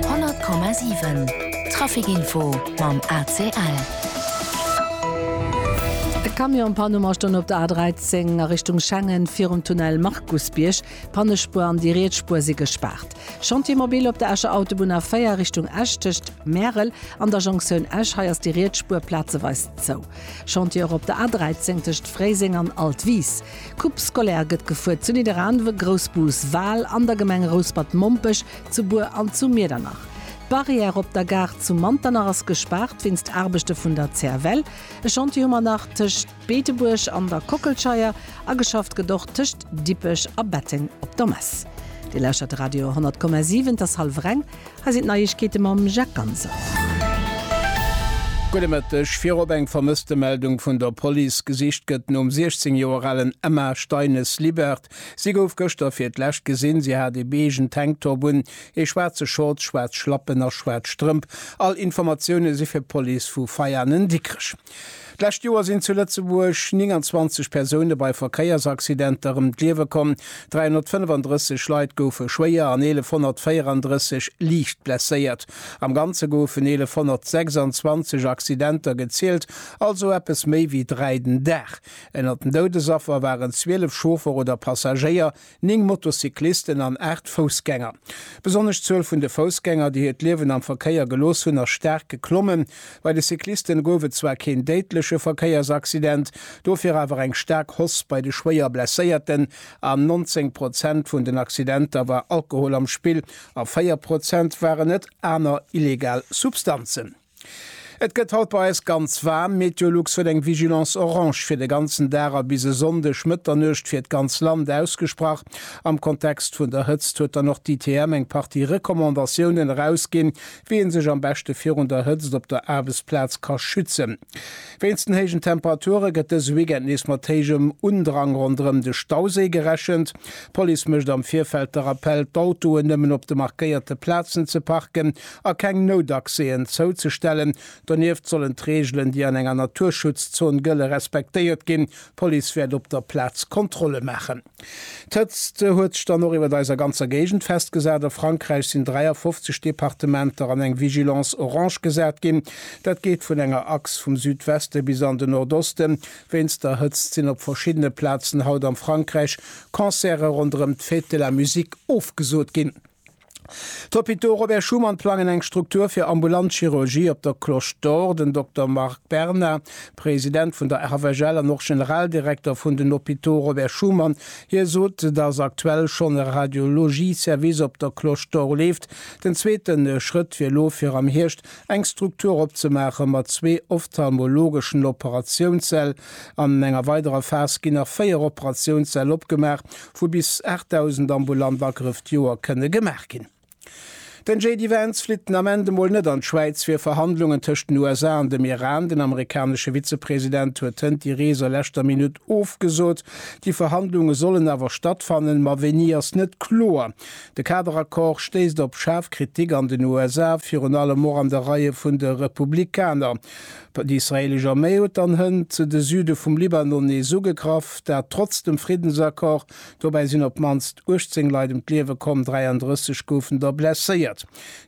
100,7 Trafic Info mam ACL. E Camion an Panne mar stoung op der A13 a Richtung Schengen virum Tunnel Markusbierg. D'Pannespuer an déi riets Spuer si gespaart. Chantier mobil op der Escher Autobunn A4 Richtung Esch tëscht Märel an der Jonktioun Esch. Hei ass déi riets Spuer plazeweis zou. Chantier och op der A13 tëscht Fréiseng an Altwis. Coupe scolaire gëtt gefuer zu Nidderaanwe, Groussbus, Wal, an der Gemeng Rouspert-Mompech, zu Bur an zu Miedernach. D'Barrière op der Gare zu Manternach ass gespaart wéinst Aarbechte vun der CFL. E Chantier hu mer nach tëscht Beetebuerg an der Kockelscheier a geschafft gëtt och tëscht Dippech a Betteng op der Mess. Dir lauschtert Radio 100,7, et ass hallef Reng. Hei sinn d'Neiegkeete mam Jacques Ganser. Gudde Mëtteg. Virop eng Vermësstemeldung vun der Police. Gesicht gëtt nom 16 Joer alen Emma Steines-Libert. Si gouf gëschter fir d'lescht gesinn. Si hat ee beigën Tanktop un, ee schwaarze Shorts, schwaarz Schlappen a schwaarz Strëmp. All Informatioune si fir d'Police vu Veianen-Dikrech. D'lescht Joer sinn zu Lëtzebuerg 29 Persoune bei Verkéiersaccidenter ëm d'Liewe komm, 335 Leit goufe schwéier an 1.134 liicht blesséiert. Am Ganze goufen 1.126 Accidenter gezielt, also eppes méi wéi dräi den Dag. Ënner den Doudesaffer waren 12 Chauffer oder Passagéier, Néng Motocyclisten an aacht Foussgänger. Besonnesch d'Zuel vun de Foussgänger, déi hiert Liewen am Verkéier gelooss hunn, ass staark geklommen. Bei de Cyclisten gouf et zwar keen déidleche Verkéiersaccident, dofir awer eng staark Hoss bei de Schwéierblesséierten. An 19 Prozent vun den Accidenter war Alkohol am Spill a 4 Prozent waren et aner illegal Substanzen. Et gëtt haut bei eis ganz waarm. Meteolux huet eng Vigilance orange fir de ganzen Dag a bis e Sonndeg Mëtternuecht fir d'ganz Land ausgesprach. Am Kontext vun der Hëtzt huet dann och d'ITM eng Partie Recommandatiounen erausginn, wéi ee sech am beschte virun der Hëtzt op der Aarbechtsplaz ka schützen. Wéinst den héijen Temperature gëtt dëse Weekend nees mat héijem Undrang ronderëm de Stauséi gerechent. D'Police mécht am Virfeld de Rappell, d'Autoen nëmmen op de markéierte Plazen ze parken. a keng Noutaccèsen zouzestellen. Donieft sollen d'Reegelen, déi an enger Naturschutzzon gëlle respektéiert ginn. D'Police wäert op der Plaz Kontrolle maachen. D'Hëtzt huet sech dann och iwwer eiser ganzer Géigend festgesat. A Frankräich sinn 53 Departementer an eng Vigilance orange gesat ginn. Dat geet vun enger Achs vum Südweste bis an den Nordosten. Wéinst der Hëtzt sinn op verschiddene Plazen haut am Frankräich Concerte ronderëm d'Fête de la musique ofgesot ginn. D'Hôpitaux Robert Schuman plangen eng Struktur fir ambulant Chirurgie op der Cloche d'Or. Den Dokter Marc Berna, President vun der RVGL an och Generaldirekter vun den Hôpitaux Robert Schuman, hie sot, datt aktuell schonn e Radiologie-Service op der Cloche d'Or leeft. Den zweete Schrëtt wier elo fir am Hierscht eng Struktur opzemaache mat zwee ophtalmologeschen Operatiounssäll. An enger weiderer Phas ginn nach véier Operatiounssäll opgemaach. wou bis 8.000 ambulant Agrëff d'Joer kënne gemaach ginn. Den JD Vance flitt den Ament emol net an d'Schwäiz fir Verhandlungen tëscht den USA an dem Iran. Den amerikanesche Vizepresident huet hënt déi Rees a leschter Minutt ofgesot. Déi Verhandlunge sollen awer stattfannen, ma wéini ass net kloer. De Kaderaccord stéisst op schaarf Kritik an den USA, virun allem och an de Reie vun de Republikaner. Déi israeelesch Arméi huet dann hënt zu de Süde vum Libanon nees ugegraff, dat trotz dem Friddensaccord. Dobäi sinn op d'mannst 18 Leit ëm d'Liewe komm, 33 goufen der blesséiert.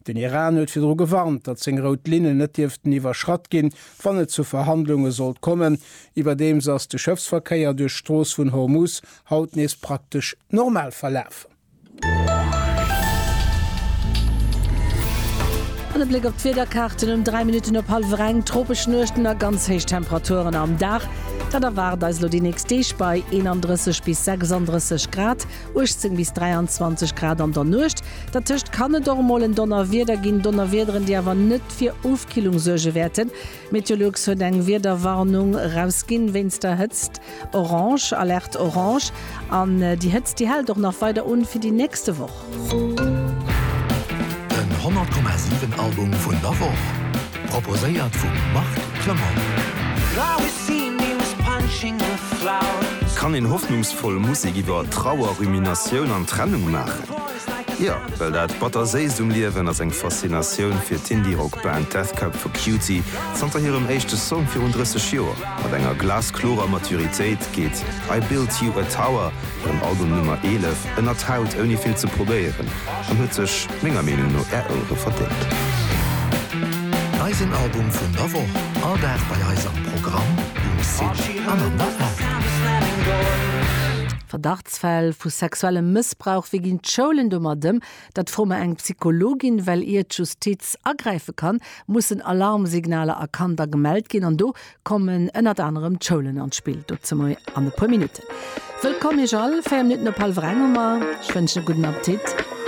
Den Iran huet virdru gewarnt, datt seng rout Linnen net dierften iwwerschratt ginn, wann et zu Verhandlunge sollt kommen. Iwwerdeems ass de Schëffsverkéier duerch d'Strooss vun Hormuz haut nees praktesch normal verlafen. An e Bléck op d'Wiederkaarten, Um 3 Minutten op hallwer eng tropesch Nuechten a ganz héich Temperaturen am Dag. Dat erwaart eis elo déi nächst Deeg bei 31 bis 36 Grad, 18 bis 23 Grad an der Nuecht. Dertëscht kann et och emol en Donnerwieder ginn, Donnerwiederen, déi awer net fir Ofkillung suerge wäerten. Meteolux huet eng Wiederwarnung erausginn wéinst der Hëtzt, Orange, Alerte Orange. An déi Hëtzt, déi hält och nach weider un fir déi nächste Woch. Den 100,7 Album vun der Woch, proposéiert vum Marc Clement. Kann een hoffnungsvoll Musek iwwer Trauer, Ruminatioun an Trennung maachen? Jo, well dat Batterséisst um Liewen ass eng Faszinatioun fir d'Indie-Rock-Band Death Cab for Cutie. Zanter hirem éischte Song virun 30 Joer, mat enger glasklorer Maturitéit, geet I Built You a Tower, hirem Album Nummer 11, ënnert d'Haut ouni vill ze probéieren an huet sech menger Meenung no Är Ouere verdéngt. Eisen Album vun der Woch, all Dag bei eis am Programm, um Site an an der App. Verdacht Verdachtsfäll vu sexuellem Mëssbrauch, wéi ginn d'Schoulen domat ëm? Dat froe mer eng Psychologin, well ier d'Justiz agräife kann, mussen Alarmsignaler erkannt a gemellt ginn. An do kommen ënnert anerem d'Schoulen an d'Spill. Dozou mei an e puer Minutten. Wëllkomm Iech all, 4 Minutten op hallwer eng hu mer. Ech wënschen e gudden Appetit.